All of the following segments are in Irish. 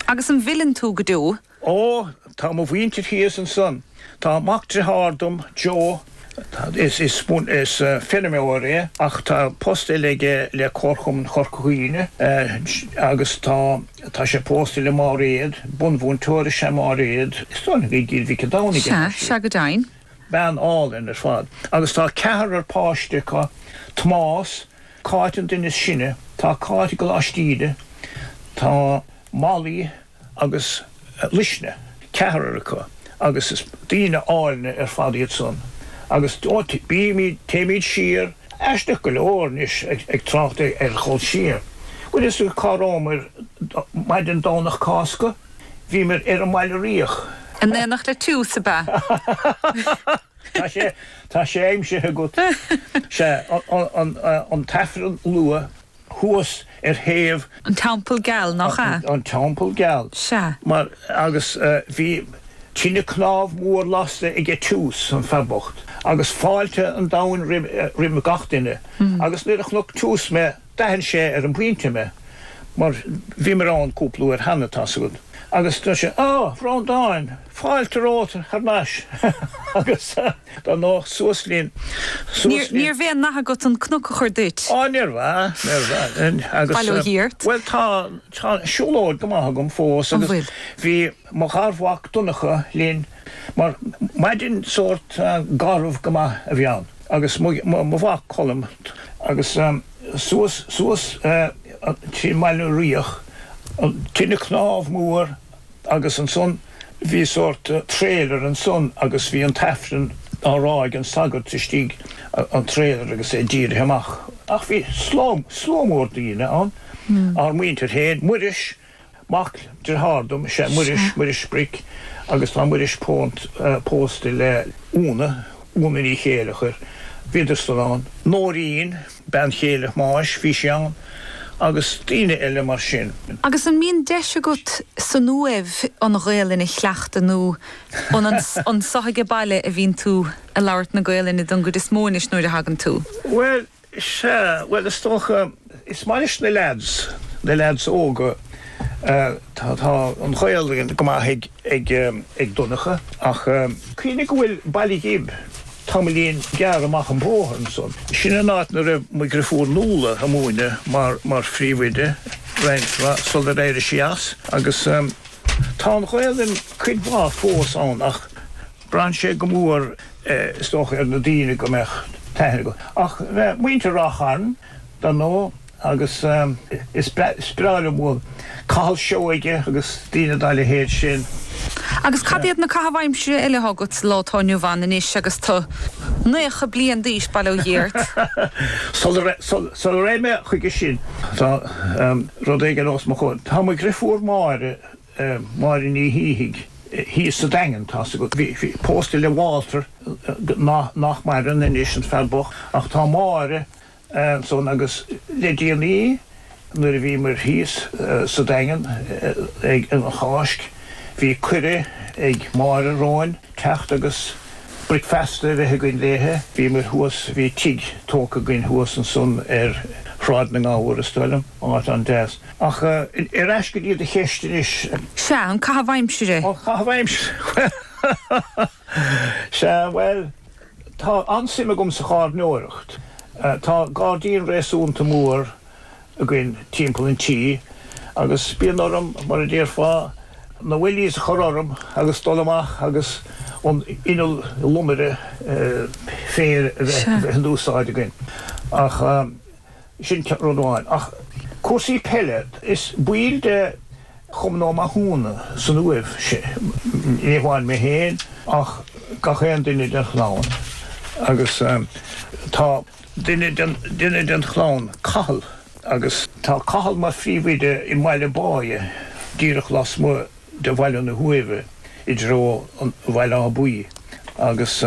Agus an bhfilleann tú go deo? Ó, tá mo mhuintir thíos ansan. Tá mac driothár dom, Joe, is feirmeoir é ach tá post eile aige le Comharchumann Chorca Dhuibhne, agus tá tá sé pósta le Máiréad, bunmhúinteoir is ea Máiréad, is dóigh liom gur i gCill Mhic a' Domhnaigh atá siad. Sea, sea, go deimhin. Bean álainn ar fad. Agus tá ceathrar páiste acu, Tomás, Cáit an duine is sine, tá Cáit i gColáiste Íde, tá Molly agus Luisne, ceathrar acu agus is daoine áilne ar fad iad san agus ó bímid, téimid siar, aisteach go leor anois ag trácht ar dhul siar, bhfuil a fhios agat cá rabhamair maidin Domhnach Cásca, bhíomair ar an mBaile Riach. In aonacht le Toose, ab ea? Tá sé, tá sé aimsithe agat. Sea, an tAifreann luath thuas ar thaobh. An Teampall Geal, nach ea? An Teampall Geal. Sea. Mar, agus bhí tine cnámh mhór lasta aige Toose, an fear bocht, agus fáilte an domhain roimhe, roimh gach duine, agus nuair a chonaic Toose mé, D'aithin sé ar an bpointe mé, mar bhíomar ann cúpla uair cheana, tá's agat, agus dúirt sé, Á, Bhreandáin, fáilte romhat thar n-ais, agus dar ndóigh, suas linn, suas linn. Níorbh aon nath agat an cnoc a chur duit. Á, níorbh ea, níorbh ea, agus, bhuel, tá siúlóid go maith agam fós, agus bhí. mo gharmhac Donncha linn mar maidin sórt garbh go maith a bhí ann agus mo mhac Colm agus suas suas dtí an mBaile Riach tine cnámh mór agus ansan bhí sórt trailer ansan agus bhí an tAifreann á rá ag an sagart istigh an trailer agus é dírithe amach ach bhí slua slua mór daoine ann ár muintir féin Muiris Mac driothár dom is ea Muiris, Muiris Bric, agus tá Muiris pó pósta le Úna, Úna Ní Chéilleachair. Bhíodar san ann. Nóirín, bean chéile Thomáis, bhí sí ann. Agus daoine eile mar sin. Agus an mbíonn deis agat san Uaimh an Ghaolainn a chleachtadh nó an anseo aige baile a bhíonn tú ag labhairt na Gaolainne don gcuid is mó anois nuair a thagann tú? Bhuel, Sea, bhuel, is dócha, is maith leis na leaids, na leaids óga, tá, tá an Ghaelainn go maith ag, ag, ag Donncha ach eh. Cuimhnigh go bhfuil Baile Ghib tamaillín gearr amach an bóthar ansan. Sin an áit 'na raibh mo dhriofúr Nuala a' múineadh mar, mar phríomhoide roinnt mhaith sular éirigh sí as agus eh tá an Ghaelainn cuid mhaith fós ann ach, Braitheann sé go mór is dócha ar na daoine go mbeadh taithí acu. Ach muintir Ráth Chairn dar ndóigh agus is breá liom Cathal Seoige agus daoine dá leithéid sin. Agus cad iad na caitheamh aimsire eile atá agat sa lá atá inniu ann anois agus tú nócha bliain d'aois, bail ó Dhia ort? Sula rachaidh mé chuige sin tá rud éigin os mo chomhair. Tá mo dheirfiúr Máire. Máire Ní Shíthigh, thíos sa Daingean, tá sí pósta le Walter, nach maireann anois, an fear bocht, ach tá Máire ansan agus le déanaí nuair a bhíomar thíos sa Daingean ag an Cháisc bhí cuireadh ag Máire romham teacht agus bricfeasta a bheith againn léithe. Bhíomar thuas, bhí tigh tógtha againn thuas ansan ar Shráid na nGabhar is dóigh liom, áit an-deas. Ach ar ais go dtí do cheist anois. Sea, an caitheamh aimsire. An caitheamh aimsire. Sea, bhuel, tá an-suim agam sa gharraíodóireacht. Tá gairdín réasúnta mór againn timpeall an tí agus bíonn orm, mar a déarfá, na wellies a chur orm agus dul amach agus an t-inneall lomaire féir a bheith in úsáid againn. Ach. Sin rud amháin. Ach cúrsaí peile, is baill de Chumann Ó Mathúna san Uaimh sinn, ní hamháin mé féin ach gach aon duine den chlann. Agus tá duine den chlann, Cathal, agus tá Cathal mar phríomhoide i mBaile Báidhe, díreach lasmuigh de Bhaile na hUaimhe i dtreo Bhaile Átha Buí agus,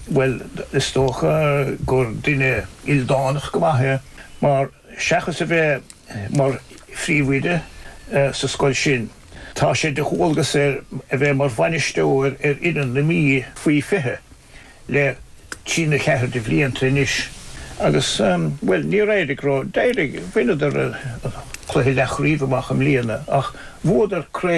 bhuel, is dócha gur duine ildánach go maith é mar seachas a bheith mar phríomhoide sa scoil sin, tá sé de dhualgas air a bheith mar bhainisteoir ar fhoireann na Mí faoi 20 le trí na ceathair de bhlianta anois agus, bhuel, níor éirigh ró, d'éirigh, bhaineadar an cluiche leathchraobh amach i mbliana ach bhuadar cré